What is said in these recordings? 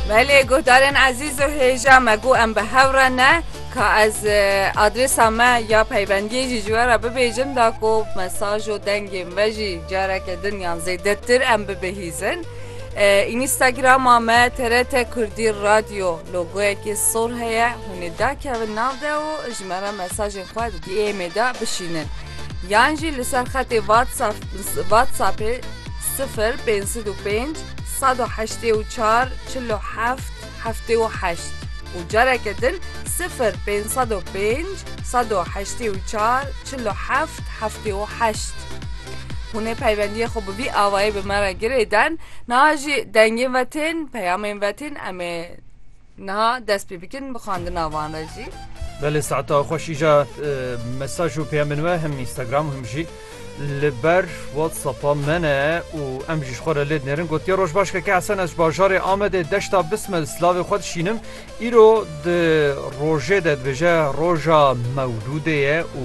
Belê guhdarên ezîz û hêja me ku em bi hev re ne ka ez adrêsa me ya peybendiyê jî ji we re bibêjim da ku mesaj û dengên ve jî careke din yan zêdetir em bibihîzin. Înîstagrama me TRT Kurdî Radyo logoyekê sor heye hûnê dakevin nav de û ji me re mesajên xwe di DMê de bişînin. Yan jî li ser xetê WhatsApp WhatsAppê Sifir pênc sed û pênc sed û heştê û çar çil û heft heftê û heşt û careke din sifir pênc sed û pênc sed û heştê û çar çil û heft heftê û heşt. Hûn ê peywendiyê xwe bi vî avayî bi me re girêden, niha jî dengên ve tên, peyamên ve tên em ê Niha dest pê bikin bi xwendina van re jî. Belê saeta xwe şîja mesaj û peyamên we him Instagram him jî li ber WhatsAppa me ne û em jî ji xwe re lê dinêrin gotiye roj baş keke Hesen ez bajarê Amedê deşta bismel silavê xwe dişînim îro di rojê de dibêje roja mewlûdê ye û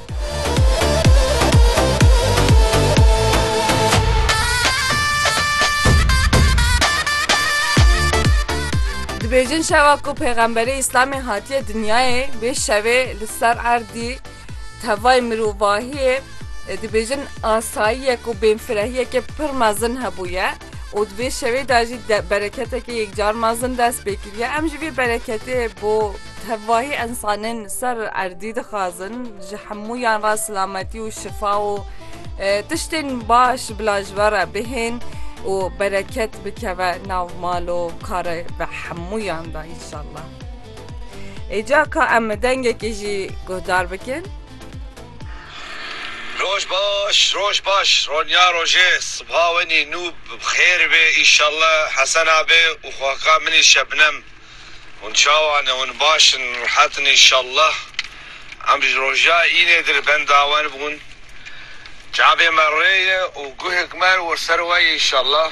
Dibêjin şewa ku pêxemberê Îslamê hatiye dinyayê vê şevê li ser erdî tevayê mirovahiyê e, dibêjin asayiyek û bêfirehiyekê pir mezin hebûye. û di vê şevê de jî bereketeke yekcar mezin dest pê kiriye. Em ji vê bereketê bo tevahî ensanên ser erdî dixwazin ji hemûyan re silametî û şifa û tiştên baş bila ji we re bihên û bereket bikeve nav mal û karê ve hemûyan de înşallah. Êca ka em dengekê jî guhdar bikin. Roj baş roj baş Ronya rojê sibha wenî nû bi xêr bê îşalla Hesen abê û xaka minî Şebnem hûn çawa ne hûn baş in rehet in îşalla em ji roja înê dir benda wan bûn çavê me rê ye û guhek me wir ser we ye îşalla.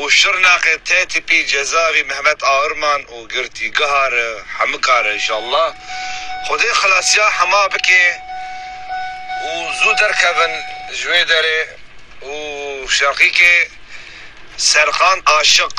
û Şirnexê tê tîpî cezavî Mehmet Ahurman û girtîgeha re hemika re inşallah Xwedê xilasiya hema bikê û zû derkevin ji wê derê û şeqîkê Serkan Aşiq